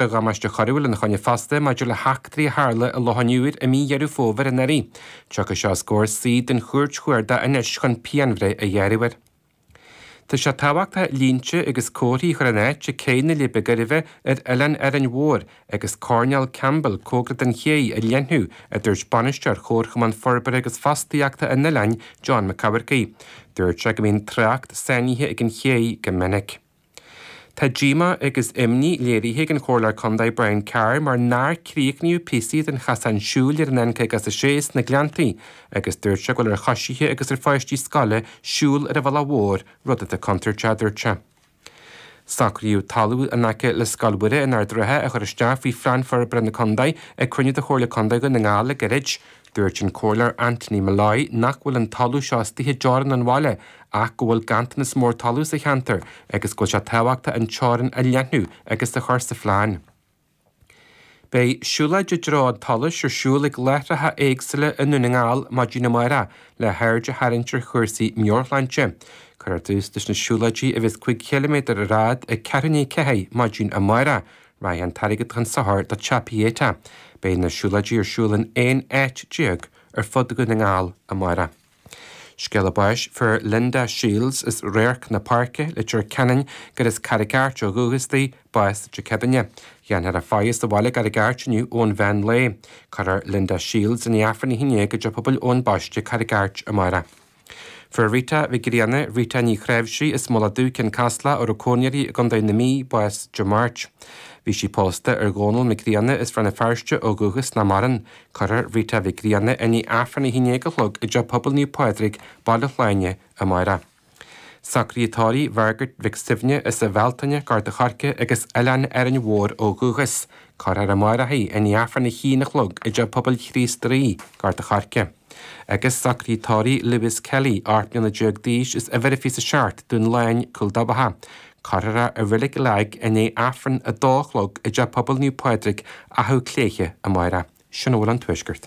Beidh damáiste coiriúil ina choinne fosta maidir le heachtraí a tharla i Loch an Iúir i mí Dheireadh Fómhair anuraidh. Tiocfaidh sé os comhair suí den Chúirt Chuarda anois chun pianbhreith a ghearradh air. Tá sé tábhachtach línte agus comharthaí a chur in áit ag cé na Leidhbe Gairbhe ar Oileán Árainn Mhór agus coirnéal Campbell cóngarach don ché a leathnú, a dúirt Bainisteoir Chomharchumann Forbartha agus Fostaíochta an oileáin, John Mac Eachmharcaigh. Dúirt sé go mbíonn trácht sáinnithe ag an ché go minic. Tá díomá agus imní léirithe ag an Chomhairleoir Contae Brian Carr mar nár críochnaíodh píosaí den chasán siúil ar an N56 sna Gleanntaí agus dúirt sé go bhfuil ar choisithe agus ar pháistí scoile siúl ar an bhealach mhór, rud atá contúirteach, a dúirt sé. Socraíodh talamh in aice le Scoil Mhuire in Ard an Rátha a chur isteach faoi Phlean Forbartha na Contae ag cruinniú de Chomhairle Contae Dhún na nGall le gairid. Dúirt an Comhairleoir Anthony Molloy nach bhfuil an talamh seo istigh i dteorainn an bhaile ach go bhfuil ganntanas mór talaimh sa cheantar agus go bhfuil sé tábhachtach an teorainn a leathnú agus a chur sa phlean. Beidh siúlóidí i dtreo an tsolais ar siúl ag láithreacha éagsúla i nDún na nGall maidin amárach le haird a tharraingt ar chúrsaí meabharshláinte. Cuirfear tús leis na siúlóidí a bheas 5 chiliméadar ar fhad ag ceathrú i ndiaidh a ceathair maidin amárach, Beidh an t-airgead chun sochair do Theach Pieta. Beidh na siúlóidí ar siúl in 11 áit ar fud Dhún na nGall amárach. Scéala báis. Fuair Linda Shields as Radharc na Páirce, Leitir Ceanainn, gurb as Carraig Airt ó dhúchas di, bás Dé Céadaoin. Dhéanfar a faire sa bhaile i gCarraig Airt inniu ón mheán lae. Cuirfear Linda Shields i ndiaidh Aifreann a haon déag i dTeach Pobail Eoin Baiste Carraig Airt amárach. Fuair Rita Mhic Grianna, Rita Ní Chnáimhsí as Mullach Dubh, Cionn Caslach, a raibh cónaí uirthi i gContae na Mí, bás Dé Máirt. Bhí sí pósta ar Dhónall Mac Grianna as Rann na Feirste ó dhúchas nach maireann. Cuirfear Rita Mhic Grianna i ndiaidh Aifreann a haon déag a chlog i dTeach Pobail Naomh Pádraig, Baile Shláine, amárach. Socruithe tórraimh Mhargaret Mhic Suibhne as an Bhealtaine, Gort an Choirce agus Oileán Árainn Mhór ó dhúchas. Cuirfear í amárach i ndiaidh Aifreann a haon a chlog i dTeach Pobail Chríost Rí, Gort an Choirce. agus socruithe tórraimh Lewis Kelly, 18 mbliana d'aois as uimhir a fiche is a seacht, Dún Laighin, Cúil Dabhcha. Cuirfear é i reilig Lag i ndiaidh Aifreann a 2 a chlog i dTeach Pobail Naomh Pádraig, Achadh Cléithe, amáireach. Sin a bhfuil ón Tuaisceart.